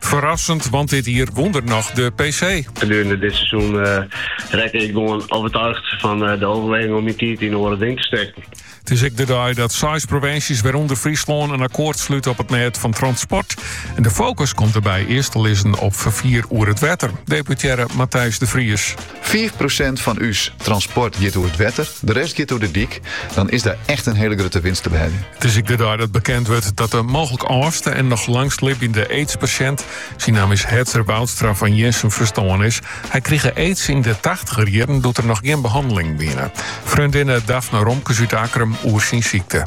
Ferrassend, want dit jier wûn er noch de PC. Gedurende dit seizoen rekke ik gewoan overtuigd fan de oerweging om myn tiid yn oare dingen te stekken. It is ek de dei dat seis provinsjes, wêrûnder Fryslân, in akkoart slute op it mêd fan transport. En de fokus komt dêrby earst te lizzen op ferfier oer it wetter, deputearre Matthijs de Vries. Fiif prosint fan ús transport giet oer it wetter, de rest giet oer de dyk, dan is der echt in hele grutte winst te beheljen. It is ek de dei dat bekend wurdt dat de mooglik âldste en noch langstlibjende aidspasjint, syn naam is Hedzer Woudstra fan Jirnsum ferstoarn is. Hy krige aids yn de tachtiger jierren doe't der noch gjin behannelingen wiene. Freondinne Daphne Romkes út Akkrum oer syn sykte.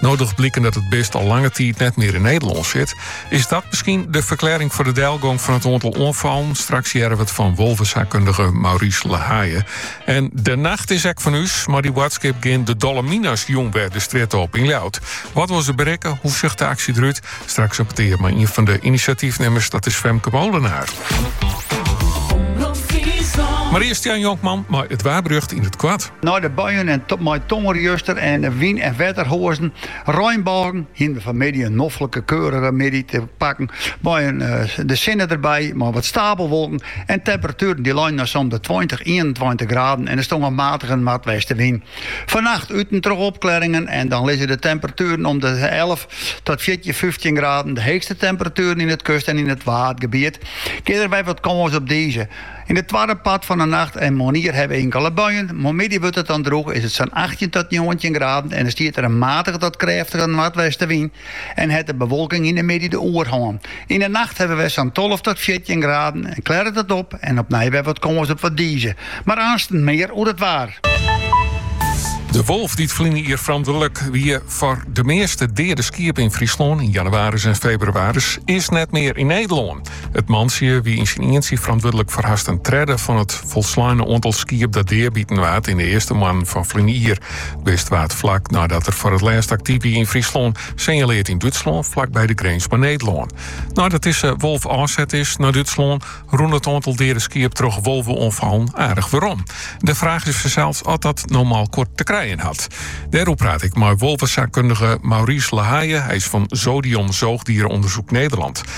No docht bliken dat it bist al lange tiid net mear yn Nederlân sit, is dat miskien de ferklearring foar de delgong fan it oantal oanfallen? Straks hearre we it fan wolvesaakkundige Maurice La Haye. En de nacht is ek fan ús. Mei die boadskip gean de Dolle Mina's jûn wer de strjitte op yn Ljouwert. Wat wolle se berikke? Hoe sjocht de aksje derút? Straks in petear mei ien fan de inisjatyfnimmers, dat is Femke Molenaar. Mar earst Jan Jonkman mei it waarberjocht yn it koart. Nei de buien en mei tonger juster en wyn en wetterhoazen, reinbôgen, hiene we fanmiddei in noflike keurige middei te pakken mei in de sinne derby mei wat stapelwolken en temperatueren dy't leinen nei sa'n de tweintich, ienentweintich graden en der stong in matige noardwestewyn. Fannacht út en troch opklearringen en dan lizze de temperatueren om de elf tot fjirtjin, fyftjin graden, de heechste temperatueren yn it kust en yn it waadgebiet. En dêrby wat kâns op dize. Yn it twadde part fan 'e nacht en moarnier hawwe we inkele buien, moarnmiddei wurdt it dan drûch, is it sa'n achttjin tot njoggentjin graden en stiet der in matige tot krêftige noardwestewyn en hat de bewolking yn 'e middei de oerhân. Yn 'e nacht hawwe we sa'n tolve tot fjirtjin graden en klêret it op en opnij wer wat kâns op wat dize, mar aansten mear oer it waar. De wolf dy't ferline jier ferantwurdlik wie foar de measte deade skiepen yn Fryslân yn jannewaris en febrewaris, is net mear yn Nederlân. It mantsje wie yn syn ientsje ferantwurdlik foar hast in tredde fan it folsleine oantal skiep dat deabiten waard yn de earste moannen fan ferline jier. It bist waard flak neidat er foar it lêst aktyf wie yn Fryslân, sinjaleard yn Dútslân flakby de grins mei Nederlân. Neidat dizze wolf ôfset is nei Dútslân, rûn it oantal deade skiep troch wolveoanfallen aardich werom. De fraach is fansels oft dat no mei elkoar te krijen hat. Dêroer praat ik mei wolvesaakkundige Maurice La Haye, hy is fan Zodion Zoogdierenonderzoek Nederland.